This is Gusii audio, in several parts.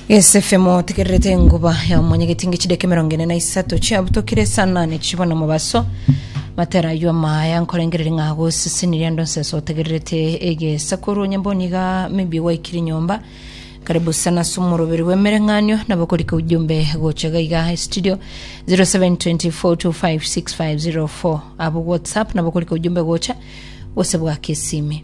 Esefemu otegererete enguba ya omonyegeti nge chideka emerongo ene na isato chiabutokire esanane chibo na mobaso matera aywo amaya nkorengereri ng'a agosesenirie ando nseso otegererete egesakoru onye mboni iga maybe gwaikire nyomba karibu sana ase omoroberi bw'emereng'anio nabo korika ujumbe gocha iga iga estudio 0724256504 abo whatsapp nabo korika ujumbe gocha gose bwake esimi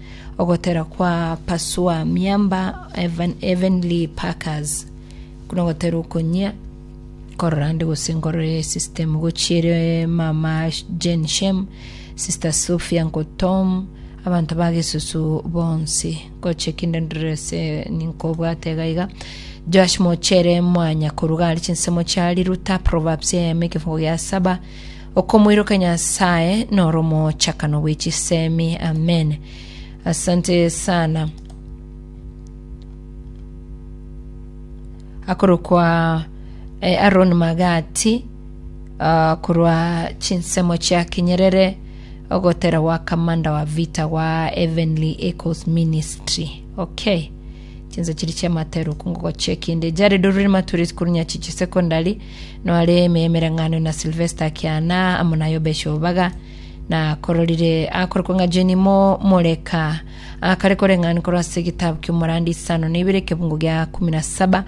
Ogotera kwa Pasua Miamba Heavenly Packers nogotera okonyia korora ande gose nkorore system gochiere mama Jane Shem sister Sophia Nkotom abanto ba gesusu bonsi goche kinde ndorese ninkobwate iga iga Joash Mochere mwanya koruga ari chinsemo chia Riruta Proverbs eyemo ekefungo gia saba Okomoiroka Nyasaye noro mochakano bwe chisemi. Amen. Asante sana. Akorokwa eh, Aaron Magati ah, korwa chinsemo chia Kinyerere ogotera gwa kamanda wa vita gwa Heavenly Echoes Ministry. Okay. Chinsa chiri chiamateru kungogo chekinde. Jared Orurima Turis Kurunyachichi Secondary Noare emereng'anio na Silvesta Kiana amo na Yobesha Obaga, na akororire akorokwa ng'a Jenimo Moleka, akare koreng'ani korwa ase egetabu ki'omorandi isano na ibere ekebungo gia kumi na saba,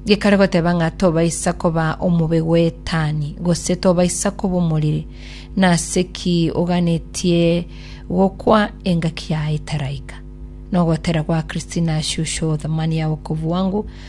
gekare goteba ng'a tobaisa koba omobe gw'Etani, gose tobaisa koba omoriri. Nase ki oganetie gokwa engaki yaye etaraika? Nogotera gwa Christina Shusho thamani ya wokovu wangu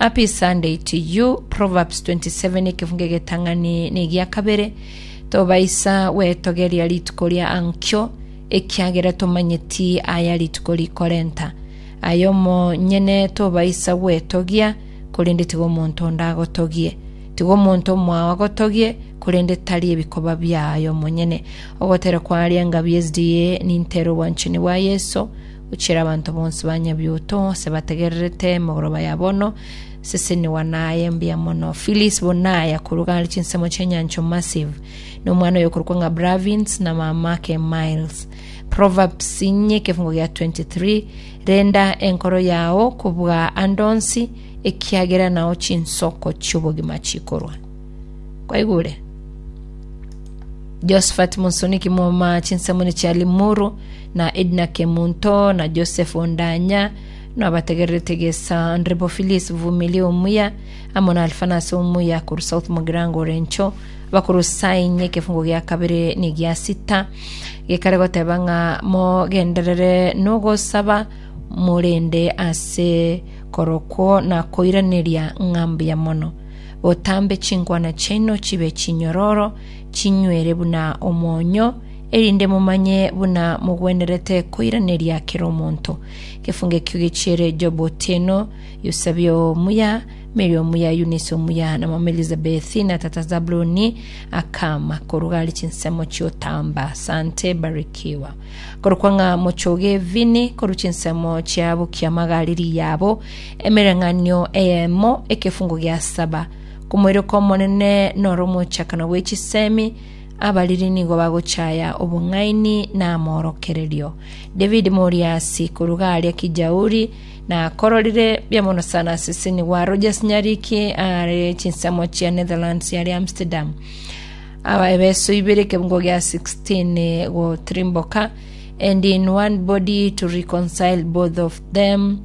A peace Sunday to you. Proverbs 27 ekefungo egetang'ani na egia kabere. Tobaisa gwetogeria rituko ria ankio, ekiagera tomanyeti aya rituko rikorenta. Aye omonyene tobaisa gwetogia, korende tiga omonto onde agotogie. Tiga omonto omwao agotogie, korende tari ebikoba biaye omonyene. Ogoterekwa aria engabi y'SDA nintera obwanchani bwa Yeso, Gochira abanto bonsi ba Nyabiuoto ase bategererete emegoroba ya bono, sesenigwa naye mbuya mono. Phyllis Bonaya korwa gare chinsemo chi'enyancho Massive, na omwana oye okorokwa ng'a Bravins na mamake Miles. Proverbs inye ekefungo gia 23, Renda enkoro yao kobua ande onsi, ekiagera nao chinsoko chi'obogima chikorwa. kwaigure josephat musoniki moma chinsamuni chia limuru na edna kemunto na joseph ondanya nabategererete gesa ndribo philis vumili omuya amo na alfanas omuya koru south mogirango orencho bakuru sainye ekefungo gia kabere ni gia sita gekare goteba ng'a mogenderere nogosaba morende ase korokwo na koiraneria ng'a mbuya mono botambe chinkwana chiaino chibe chinyororo, chinywere buna omonyo, erinde momanye buna mogwenerete koiraneria kera omonto. Gefungekio gechiere Job otieno, Eusebio omuya, Mary omuya, Eunice omuya, na mama Elizabethi, na tata Zabuloni, akama koruga ari chinsemo chiotamba. Sante, barikiwa. Korokwa ng'a mochoge vini, korwa chinsemo chiabo kiamagari riyabo, Emereng'anio eyemo, ekefungo gia saba. Komoirokio Omonene noro omochakano bwe chisemi, abariri nigo bagochaya obong'aini na amorokererio. David moriasi korwa garia kijauri, na akororire biamono sana aseseni wa Rogers Nyariki are chinsemo chia Netherlands yare Amsterdam. Aba ebeso ibere ekefungo gia 16 gotirimboka, and in one body to reconcile both of them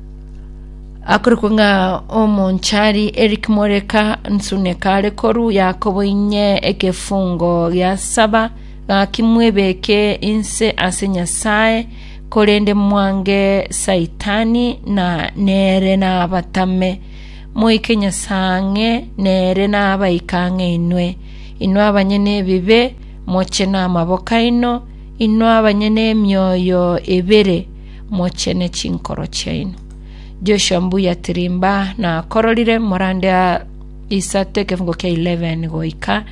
akorokwa ng'a omonchari Eric Moreka Nsuneka are korwa Yakobo inye ekefungo gia saba gaki mwebeke inse ase Nyasae korende mwange Saitani na nere nabatame moike Nyasae ang'e nere nabaike ang'e inwe inwe abanyene ebibe moche namaboko aino inwe abanyene emioyo ebere mochene chinkoro chiaino. Joshua mbuya tirimba nakororire morande aa isato ekefungo kia 11 goika,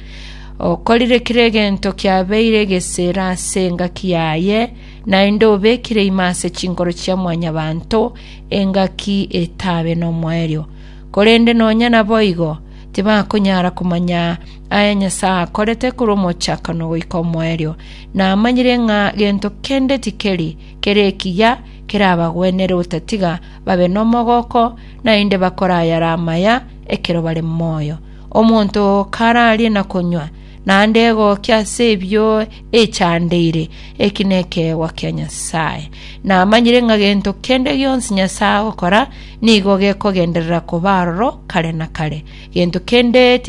okorire kera egento kiabeire egesira ase engaki yaye, naende obekire ime ase chinkoro chia mwanyabanto engaki etabe nomoerio. Korende nonya naboigo, tibakonyara komanya aya Nyasae akorete korwa omochakano goika omoerio. Namanyire ng'a gento kende tikeri kere ekiya kerabagwenere otatiga babe nomogooko, naende bakore ayare amaya ekero bare moyo. Omonto oo kararie na konywa, naende egookia ase ebio echandeire, eki nekeegwa kia Nyasae. Namanyire ng'a gento kende gionsi Nyasae agokora nigo gekogenderera koba aroro kare na kare. Gento kende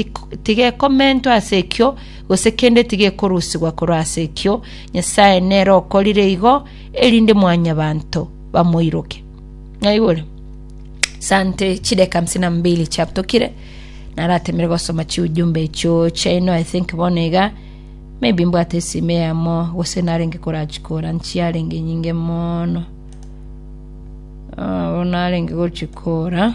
tigekomentwa ase ekio, gose kende tigekorusigwa korwa ase ekio, Nyasae nere okorire igo, erinde mwanyabanto bamoiroke. Naigure? Sante chideka hamsini na mbili chiatokire naratemire gosoma chiujumbe echio chaino i think bono iga maybe mbwate esime yamo gose narenge korachikora nchiarenge nyinge mono Ah, bono narenge gochikora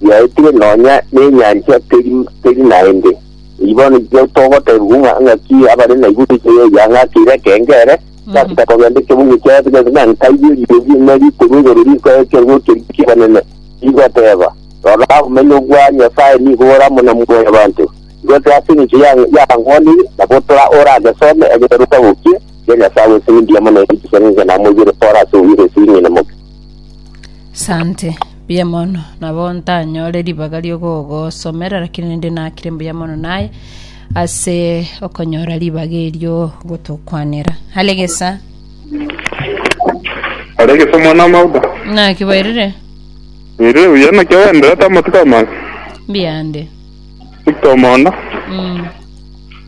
biaetire nonya nenyancha teri teri naende. Eyi bono ekio togoteebigwa ng'a ng'aki abare na iguru ekiya eya ng'aki ere ekengere, gachaka kogenda ekebungo kiaye bigende na nkaigwe eriogi erinde rikorwa igoro rikoe ekerua ekeria ki'ebanene, rigoteeba, Rora, obomenyo bwa Nyasae nigo ore amo na moyo banto. Gose ase engencho ya y'ankwanire, nabo tora oragesome egeberuka gokia, Ria Nyasae gwesini mbiamo naende chisang'enchana namoigwere pore ase obuya gose ing'ina moke. Sante, mbuya mono. Nabo ntanyore ribaga ri'ogogosomera, rakini rende nakire mbuya mono naye ase okonyora ribaga erio gotokwanera. Alegesa, Aregesa omwana w'amauga. naki bairire, Ere uya naki agenderete amatuko amaya. mbiyande. Victor Omondo. Mm.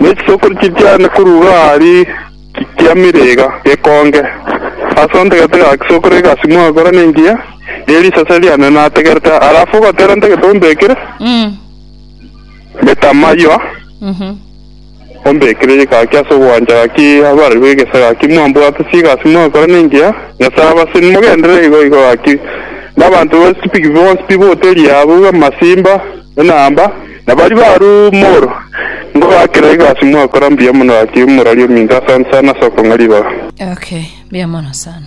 Ne chisokoro chi'ekianda korwa iga aria chiamire iga gekonge, ase ontagete iga chisokoro iga simwa gokora nengiya ye risase riane nategerete, alafu ogotera nte getombe ekere metamaywa ombekire gaki ase ogwancha gaki abarerwe egesa gaki mwambwate ase iga simwa gokora nengiya Nyasaye abase mogenderere igo igo gaki, na abanto bonsi pi bonsi pi boteri yabo iga amasimba enamba. Na baria barumorwe nigo bakera egasi mwakora mbuya mono gaki omorwari ominto asansa sana ase okong'a ribaga. Okay, mbuya mono sana.